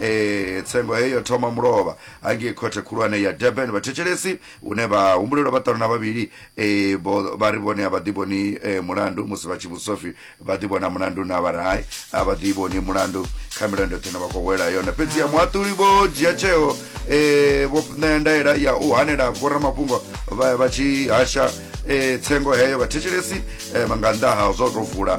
e, tsengo heyo thoma mulovha hangei khothe khulwane ya durban vhathetshelesi hune vha humbulelwa vhaṱanu na vhavhili e, vho- vha ri vhone a vha ḓivhoni e, mulandu musi vha tshi vhudziswa pfi vha ḓivhona mulandu na vha ri hai a vha ḓivhoni mulandu kha milandu yoṱhe ine vha khou wela yone fhedzi ya muhaṱuli vho dzhia tsheo e, vho ṋea ndaela ya u hanela vhoramafhungo vha vha tshi hasha e, tsengo heyo vhathetshelesi e, nga nnḓa ha zwo tou vula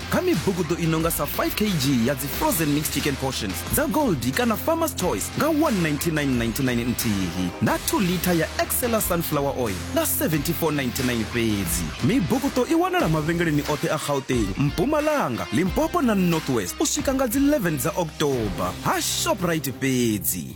kha mibugudo i nonga sa 5 kg ya dzi frozen mixed chicken portions dza goldi kana farmers choice nga 19999 nthihi na 2 liter ya excela sunflower oil nga 7499 fhedzi mibugudo i wanala mavhengeleni oṱhe a gauteng mpumalanga limpopo na northwest u swika nga dzi 11 dza october ha shoprite fhedzi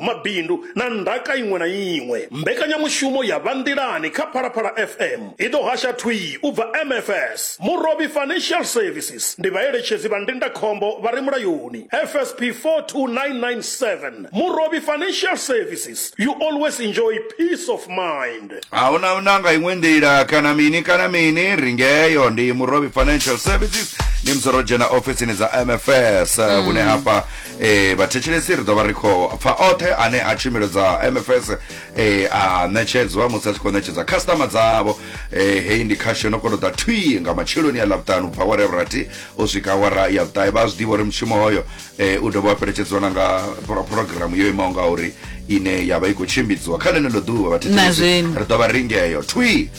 mabindu na ndaka iṅwe na iṅwe. Mbekanyamushumo ya Vha Nḓilani kha Phalaphala FM i ḓo hasha thwii u bva MFS. Murovhi Financial Services ndi vhaeletshedzi vha ndindakhombo vha re mulayoni, FSP 42997. Murovhi Financial Services, you always enjoy peace of mind. A hu na na nga iṅwe nḓila kana mini kana mini ri ngeyo ndi murovhi financial services ni musi ro dzhena ofisini dza mfs eh, hune hafha Vhathetshelesi ri ḓo vha ri khou pfa oṱhe ane a tshumelo dza mfs a ṋetshedzwa musi a tshi khou ṋetshedza khasiṱama dzavho heyi ndi khasho no kono ḓa thwii nga matsheloni ya ḽavhuṱanu ubva awara ya vhurathi u swika awara ya vhuṱahe vha a zwiḓivha uri mushumo hoyo u dovha wa fheletshedzwa na nga phurogiramu yo imaho nga uri ine ya vha i khou tshimbidziwa kha ḽeneḽo ḓuvha vhathetshelesi ri ḓo vha ringeyo thwii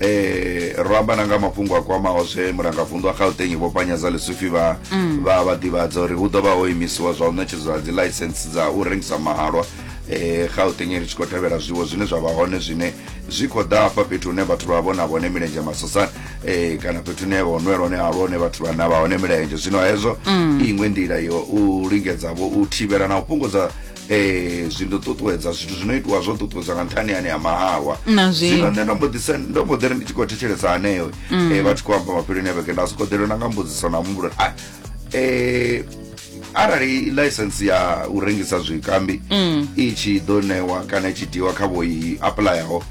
eh ro amba na nga mafhungo a kwamaho zwe murangavundu wa gauteng vho panyaza lesufi vha mm. vha vha ḓivhadza uri hu ḓo vha ho imisiwa zwa u ṋetshedzwa dzi license dza u rengisa mahalwa eh gauteng ri tshi khou tevhela zwiwo zwine zwa vha hone zwine zwi khou ḓa hafha fhethu hune vhathu vha vhona vhone milenzhe masosani eh kana fhethu hune ho nwela hone halwa hone vhathu vha na vha hone milenzhe zwino hezwo mm. iṅwe nḓila yo u lingedza vho u thivhela na u fhungudza eh zwi ndo ṱuṱuwedza zwithu zwino itiwa zwo ṱuṱuwedza nga nṱhani ane ya mahalwa Na zwino. zwino nṋe ndo mbo ḓi sa- ndo mbo ḓi ri ndi tshi khou thetshelesa haneyo Mm. eh vha tshi khou amba mafheloni a vhege nda soko ḓelwe na nga mbudziso na muhumbulo a eh arali license ya u rengisa zwikambi Mm. i tshi ḓo ṋewa kana i tshi tiwa kha vho i aplayaho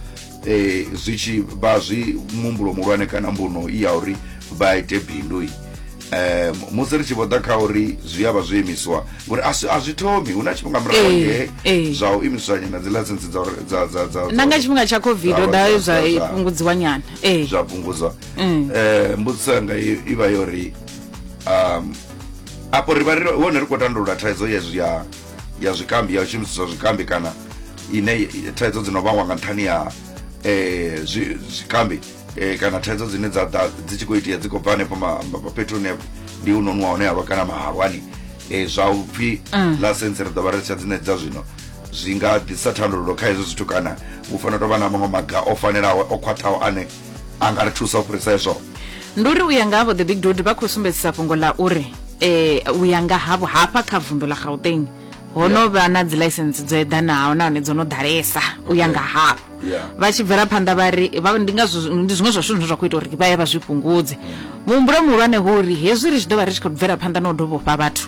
eh zwi tshi vha zwi muhumbulo muhulwane kana mbuno i ya uri vha ite bindu i eh musi ri tshi vho ḓa kha uri zwi avha zwi imiswa ngori a si- a zwi thomi hu na tshifhinga murahu Eh, nge eh. zwa u imiswa nyana dzi license dza uri- dza dza dza na nga tshifhinga tsha covid ho ḓa Zwa- zwa zwa- zwa- fhungudziwa nyana ee zwa fhungudzwa Mm. eh mbudziso yanga i i vha yo ri um apo ri vha ri hone ri khou tandulula thaidzo ya zwi- ya ya zwikambi ya u shumisiswa zwikambi kana ine thaidzo dzi no vhangwa nga nṱhani ya eh zwi- zwikambi e, kana thaidzo dzine dza ḓa dzi tshi khou itea dzi khou bva hanefho fhethu hune ndi u nonwa hone halwa kana mahalwani e, zwa upfhi mm. lasentse ri ḓo vha ri tsha dzine dza zwino zwi nga ḓisa thandululo kha hezwo zwithu kana hu fanela tovha na maṅwe maga o fanelaho o khwaṱhaho ane a nga ri thusa u fhirisa hezwo ndi uri u ya nga havho the big dod vha khou sumbedzisa fhungo ḽa uri um u ya nga havho hafha kha vunḓu ḽa gauteng ho no vha na dzi ḽaisense dzo eḓanaho nahone dzo no ḓalesa u ya nga havho vha tshi bvela phanḓa vha ri ndi ngazwo ndi zwiṅwe zwa zwithu zwine zwa khou ita uri vha ye vha zwi fhungudze muhumbulo muhulwane ho uri hezwi ri tshi ḓo vha ri tshi khou bvela phanḓa na u dovhofha vhathu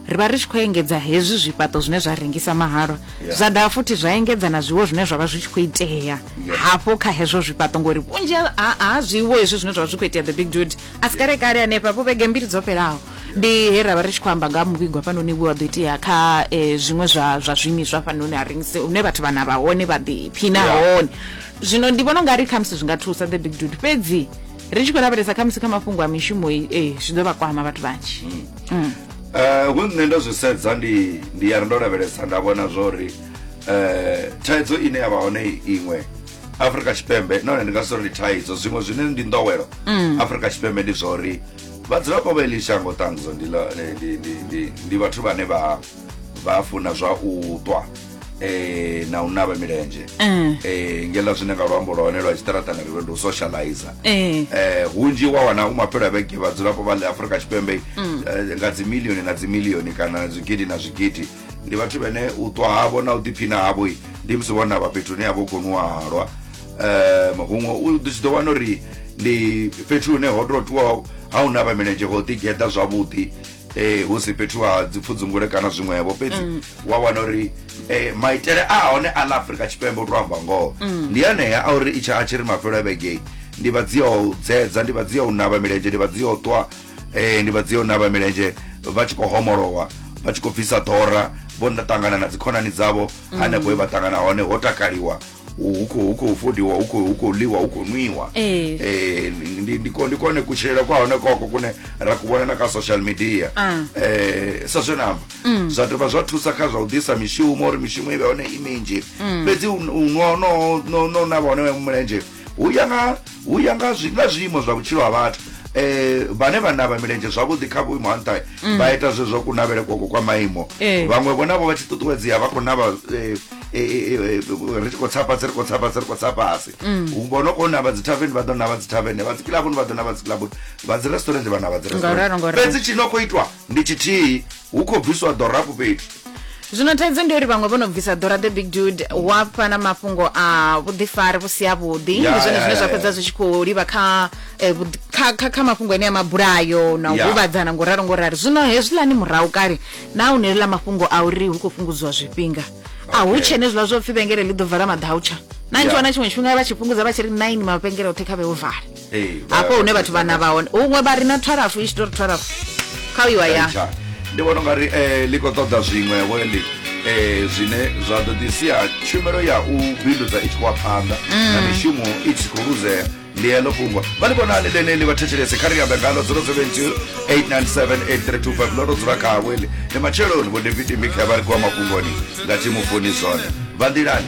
ri vha ri tshi khou engedza hezwi zwifhaṱo zwine zwa rengisa mahalwa zwa dovha futhi zwa engedza na zwiwo zwine zwa vha zwi tshi khou itea hafho kha hezwo zwifhaṱo ngori vhunzhi ha zwiwo hezwi zwine zwa vha zwi khou itea the big dude a si kale kale hanefha vho vhege mbili dzo fhelaho ndi he ra vha ri tshi khou amba nga ha muvhigo hafhanoni we wa ḓo itea kha um zwiṅwe zwa zwa zwiimiswa hafhanoni ha rengise hune vhathu vhana vha hone vha ḓiphina hone zwino ndi vhona u nga ri khamusi zwi nga thusa the big dude fhedzi ri tshi khou lavhelesa khamusi kha mafhungo a mishumo ee zwi ḓo vha kwama vhathu vhanzhi mm. Eh, hu nṋe ndo zwi sedza ndi ndi ya ri ndo lavhelesa nda vhona zwori um eh, thaidzo ine ya vha hone iṅwe afrika tshipembe nahone ndi nga si ri ndi thaidzo zwiṅwe zwine ndi ndowelo mm. afrika tshipembe ndi zwori vhadzulapo vha eḽi shango ṱanzwa ndi vhathu vhane vha vha funa zwa u ṱwa eh na u navha milenzhe mm. eh ngela zwine nga luambo lwa hone lwa tshiṱaratani ri ndi u socializer mm. eh hunzhi wa wana u maphelo a vhege vhadzulapo vha ḽa afrika tshipembe mm. eh, nga dzimilioni na dzimilioni kana zwigidi na zwigidi ndi vhathu vhene u ṱwa havho na u ḓiphina havho ndi musi vho navha fhethu hune havha u khou nwihalwa um huṅwe u tshi ḓo wana uri ndi fhethu hune ho tou tiwaho ha u navha milenzhe ho ḓigeḓa zwavhuḓi um hu si fhethu ha dzipfudzungule kana zwiṅwevho fhedzi mm. wa wana uri um maitele a hone a ḽa afurika tshipembe u tou amba ngoho mm. ndi anea a uri i tsha a tshi ri mafhelo a vhegei ndi vha dzi ya u dzedza ndi vha dzi ya u navha milenzhe ndi vha dzi ya u ṱwa eh, ndi vha dzio na vha milenzhe vha tshi khou homolowa vha tshi khou bvisa ḓora vho nda ṱangana na dzikhonani dzavho hanefho he vha ṱangana hone ho takaliwa hu hu khou hu khou fodiwa hu khou hu khou ḽiwa hu khou nwiwa Eh. Eh, ndi- ndi- ndi ko- ndi kone kutshilele kwa hone koko kune ra ku vhona na kha social media Ah. eh sa zwe namba zwa dovha zwa thusa kha zwa u ḓisa mishumo uri mishumo i vhe hone i minzhi fhedzi u u nwa no no no na vhone mulenzhe hu ya nga hu ya nga zwi nga zwiimo zwa vhutshilo ha vhathu eh vhane vha navha milenzhe zwavhuḓi kha vhuimo ha nṱha mm. vha ita zwezwo ku navhele kwoko kwa maimo eh. vhaṅwe vho navho vha tshi ṱuṱuwedzea vha khou navha eh, eh, ri tshi khou tsa fhasi ri khou tsa fhasi ri khou tsa fhasi mm. vho no khou navha dzithaveni vha ḓo navha dzithaveni vha dzikilabuni vha ḓo navha dzikilabuni vha dzi restaurant vha navha dzi restaurant fhedzi tshi no khou itwa ndi tshithihi hu khou bviswa ḓorafu fhethu zwino thaidzo ndi uri vhaṅwe vho no bvisa ḓora the big dude wa fha na mafhungo a vhuḓifari vhu si a vhuḓi Ya, ndi zwone ya, zwine ya, zwa ya. fhedza zwi tshi khou livha kha eh, vhuḓi- kha- kha- kha mafhungo ene a mabulayo na u Ya. huvhadzana ngo ralo ngo ralo zwino hezwiḽani murahu kale na u nelela mafhungo a uri hu khou fhungudziwa zwifhinga a hu Okay. tshe ne zwiḽa zwo pfi vhengele ḽi ḓo vala maḓautsha na Ya. ntshiwa na tshiṅwe tshifhinga vha tshi fhungudza vha tshi ri nine mavhengele oṱhe kha vhe o vala hafho hune vhathu vhana vha hone huṅwe vha ri na thwarafu i tshi tou ri thwarafu kha uiwa ya Tsha. ndi vhona ungari eh, ḽi khou ṱoḓa zwiṅwevho heḽi eh, zwine zwa ḓo ḓi sia tshumelo ya u bindudza i tshi khou ya phanḓa na mishumo i tshi khou luzea ndi heḽo fhungo vha ḽi vhonani ḽeneḽi vha thetshelese kha ri ambe ngalo 072897835 ḽo ro dzula khavho heḽi ndi matsheloni vho david mikhe vha ri kuwa mafhungoni nga thimu foni zone vha nḓilani